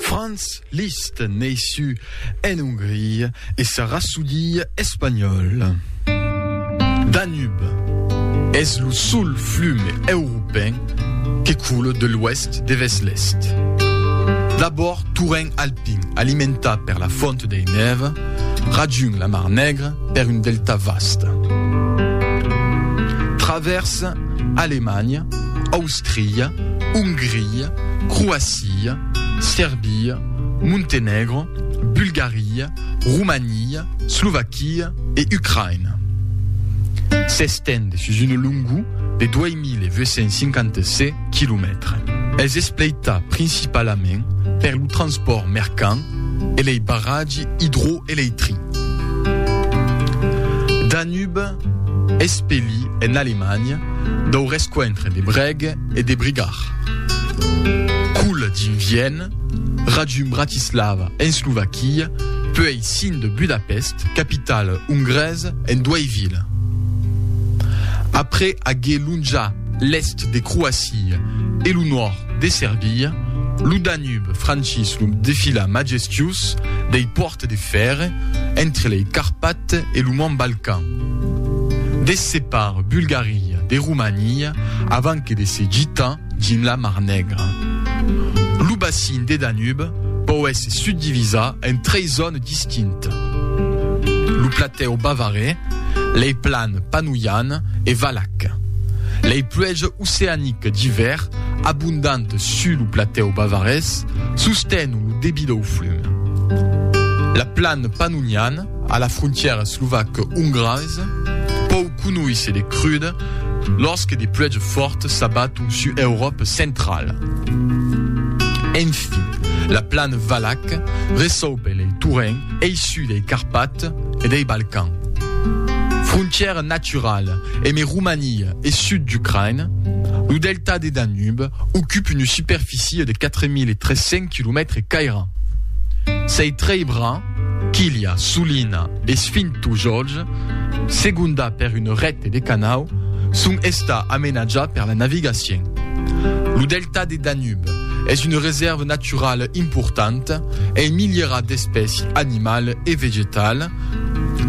Franz Liszt, neissu en Ongria, e sa rasodilha espanhòla. Danub es lo sol flum europèn que coule de l'oèst devers l'èst. D'abòrd torrent alpin alimentat per la fònt dei Nève, rajung la Mar Nègra per un delta vast. Travèrsa. Alemanha, Austria, Ongria, Croacia, Serbia, Montenègro, Bulgaria, Romania, Slovaquia e Ucraïna. S'estend sus una longor de 2.857 quilomètres. Es espleita principalament per lo transpòrt mercant e lei barratgi idroelectric. Espeli en Alemanha dau rescuentre de Breg e de Brigar. Coul dins Vienne, rajun Bratislava en Slovaquia, puei cin de Budapest, capitala ongresa, en duei vila. Après aguer lonjat l'èst de Croacia e lo nòrd de Serbia, lo Danube franchís lo defilà majestiós dei pòrtes de fèrre entre lei Carpates e lo Mont Balkan. Quand de separ Bulgaria de Romania avant que de se gitar dins la Mar Negra. Lo bacin de Danube pòu èsser subdivisar en tres zònes distintes, lo platèu Bavaré, lei plans Panoian e Valac. Lei pluèges oceaniques d'ivèr abondantes sus lo platèu bavarés sostenon lo debit dau flum. La plans Panoian A la frontièra slovac-ongresa, pòu conoisse de cruda, lòrsque de pluèges fòrtes s'abaton sus Euròpa centrala. Enfin, la plana valaca resaupe lei torrents eissus dei Carpates e dei Balcans. Frontièra naturala eme Romania e sud d'Ucraina, lo delta de Danube ocupe una superficia de 4.300 quilomètres cairats. Sei trei bras, Quilha, Sulina e Sfintu Jorge, segonda per un rècte de canau, son estar amenatjats per la navigacion. Lo delta de Danube es una resèrva naturala importanta en milierats d'espèci animala e vegetala,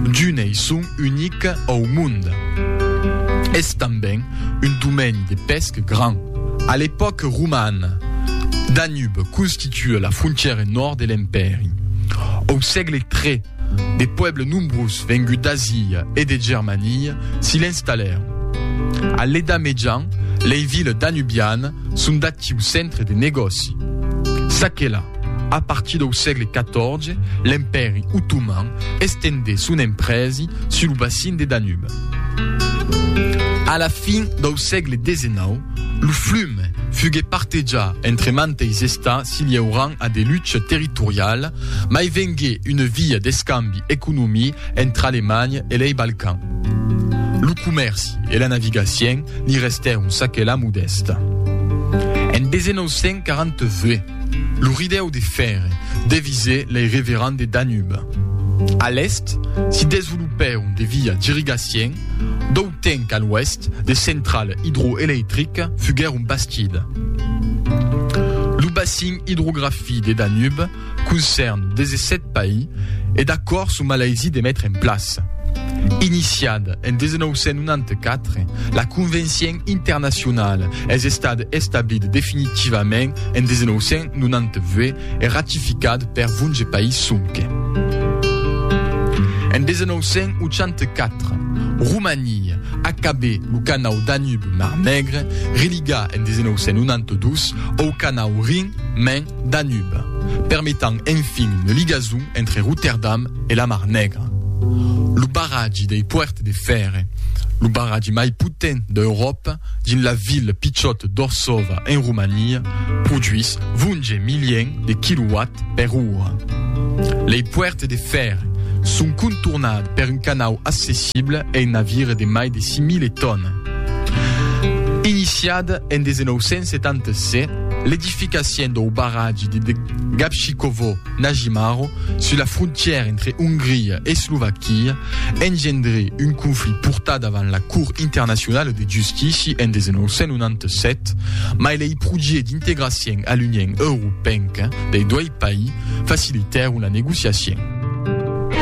d'unei son unic au mond. Es tanben un domeni de pèsca grand. A l'epòca romana, Danube constituissiá un pòrt per las navigacions e las mercaderies. Tua la frontièra nòrd de l'Empèri. Au sègle tre, de puèbles nombrós venguts d'Asia e de Germania s'i l'installèron. A l'Eda Mejan, lei viles danubianes son d'actiu centre de negòci. Çaquelà, a partir dau sègle XIV, l'Empèri Otoman estendé son emprèsi sul bacin de Danube. A la fin dau sègle XIX, Lo flum fugue partejat entre manteis estats si liaurant a de lucha territoriala, mai vengué una via d'escambi economí entre Alemanha e lei Balcan. Lo comèrci e la navigacien li restèron çaquelà modèsta. En 1942, lo ridèu de fèrre devisé lei revirant de Danube. A l'èst, si desvolopèron de via d'irrigacien, Tenc a l'oèst de central idroeleitric fuguèr un bastid. Lo bassin idrografi de Danube concèrn 17 paí e d'acòrd son malaisí de metre en plaça, iniciat en 1994, la convencien internacionala es estat establit definitivament en 1998, e ratificat per 20 país sonque. En 1984, Romania acabè lo canau Danube-Mar Negre, religa en 1992 au canau Rin-Main-Danube, permetant enfin una ligason entre Rotterdam e la Mar Negra. Lo barratge dei Puertes de Fèrre, lo barratge mai potent d'Euròpa, dins la ville pichòt d'Orsova en Romania, produís 20 milièns de quilowatts per ora. Lei puèrtes de fèrre son contornades per un canau accessible e un navire de mai de 6.000 tònas. Iniciada en 1977, l'edificacion dau barratge de Gabčíkovo, Nagymaru, sus la frontièra entre Ongria e Slovaquia, engendré un conflit portat davant la Cort Internacionala de Justici en 1997, mai lei projèts d'integracion a l'Union Europenca dei dois país facilitèron la negociacion.